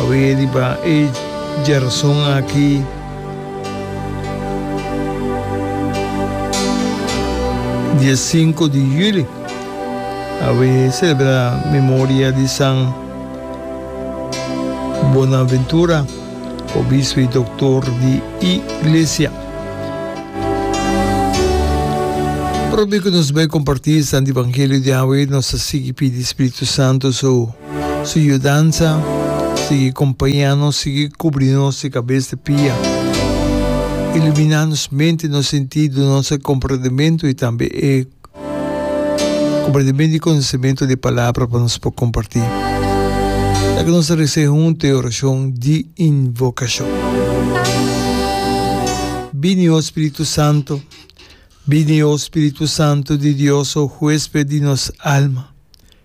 Awe riba e djerason aki. Dia sinku di juli, awe selebrá memoria di San Bonaventura, obispo i doktor di Iglesia. Promé ku nos bai kompartí e santu evangelio di awe, nos a sigui pidi Spiritu Santu su. Su yudansa sigui compaña nos, sigui cubri nos di cabes te pia. Ilumina nos mente, nos sentido, nos e comprendimento y tambe e comprendimento y conocimento di e palabra pa nos por comparti. Laga nos rece hunto e oracion di invocacion. Bini, o Spiritu Santo. Bini, o Spiritu Santo di Dios, o huesped di nos alma.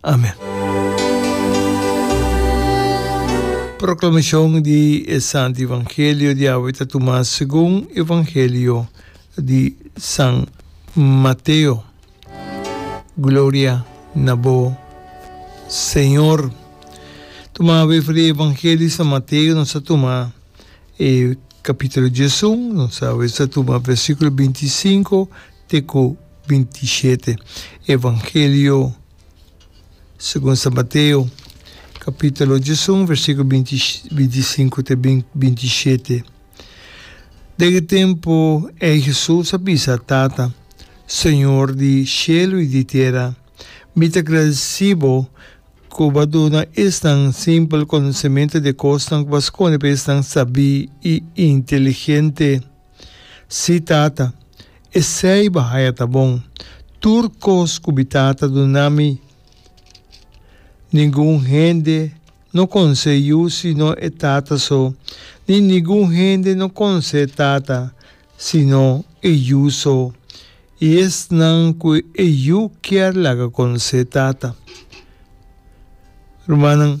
Amen. Proclamacion di e Santo Evangelio di awe ta tuma segun Evangelio di San Mateo. Gloria na bo, Señor. Tuma awe for di Evangelio di San Mateo nos a tuma e capitulo diesun, nos awe sa tuma versiculo binti sinco te cu Bintisiete. Evangelio segun San Mateo, kapitulo diesun, versikulo binti bintisinku te bintisiete. Den e tempu ei Hesus a bisa, Tata, Señor di shelu i di tera, mi ta gradesí bo ku bo a duna esnan simpel konosementu di e kosnan ku bo a skone pa esnan sabí i inteligente. Sí, tata, esei bahaya ta bon. Tur kos ku bi tata duna mi, ningun hende no konsé yu sino e tata so, ni ningun hende no konsé tata sino e yu so, i esnan ku e yu kier laga konsé tata. Rumannan,